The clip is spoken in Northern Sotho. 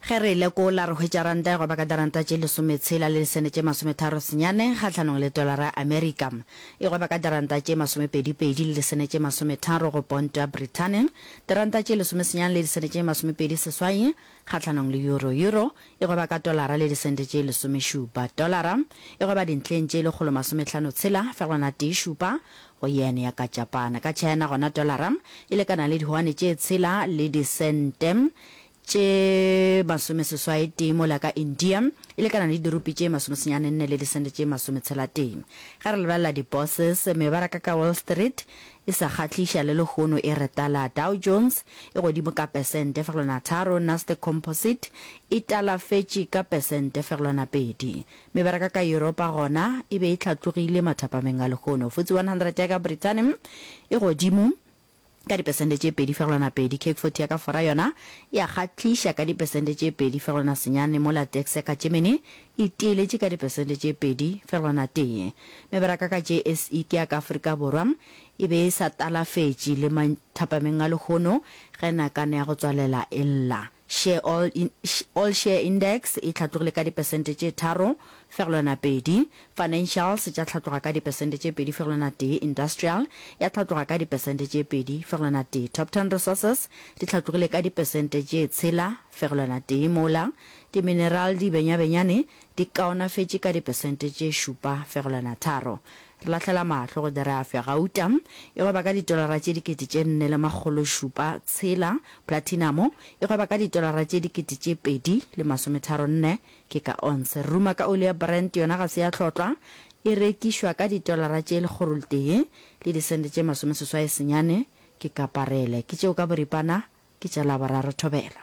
Ge re e lekola, re hwetša ranta e goba ka diranta tše lesometshela le lisene tše masometharo senyane kgahlanong le tolara ya Amerika. E goba ka diranta tše masomepedipedi le lisene tše masometharo go ponto ya Brithane, diranta tše lesomesenyane le lisene tše masomepedi seswai kgahlanong le euro. Euro e goba ka tolara le disente tše lesomešupa. Tolara e goba dintlheng tše lekgolo masomehlano tshela fegelwana tee šupa go yene ya ka Japana. Ka China gona dolara e lekana le dihuane tše tshela le disente tše masomeseswaetee mola ka India e lekana le dirupi tše masomesenyane nne le disente tše masometshela-tee. Ge re lebelela di-bourses, mebaraka ka Wall Street e sa kgahliša le lehono e re tala. Dow Jones e godimo ka pesente fegelwana tharo, Nasdaq Composite e talafetše ka pesente fegelwana pedi. Mebaraka ka Yuropa gona e be e hlatlogile mathapameng a lehono. FTSE 100 ya ka Brithani e godimo ka dipesente tše pedi fegelwana pedi. CAC 40 ya ka Fora yona e a kgahliša ka dipesente tše pedi fegelwana senyane mola DAX ya ka Germany e teeletše ka dipesente tše pedi fegelwana tee. Mebaraka ka JSE ke ya ka Afrika Borwa e be e sa talafetše le mathapameng a lehono ge nakane ya go tswalela e lla. Sheol in, Sheol Share Index e hlatlogile ka dipesente tše tharo fegelwana pedi, Financials tša hlatloga ka dipesente tše pedi fegelwana tee, Industrial ya hlatloga ka dipesente tše pedi fegelwana tee, Top Ten Resources di hlatlogile ka dipesente tše tshela fegelwana tee mola Dimineral di benyabenyane di kaonafetše ka dipesente tše šupa fegelwana tharo. Re lahlela mahlo go Derafia, gauta, e gweba ka ditolara tše dikete tše nne le makgolo šupa tshela, platinamo, e gweba ka ditolara tše dikete tše pedi le masometharo nne, ke ka onse. Re ruma ka oli ya Brent, yona ga se ya tlhotlwa, e rekišwa ka ditolara tše lekgoroltee le disente tše masomeseswai senyane, ke ka parele. Ke tšeo ka boripana, ke tša Laboraro thobela.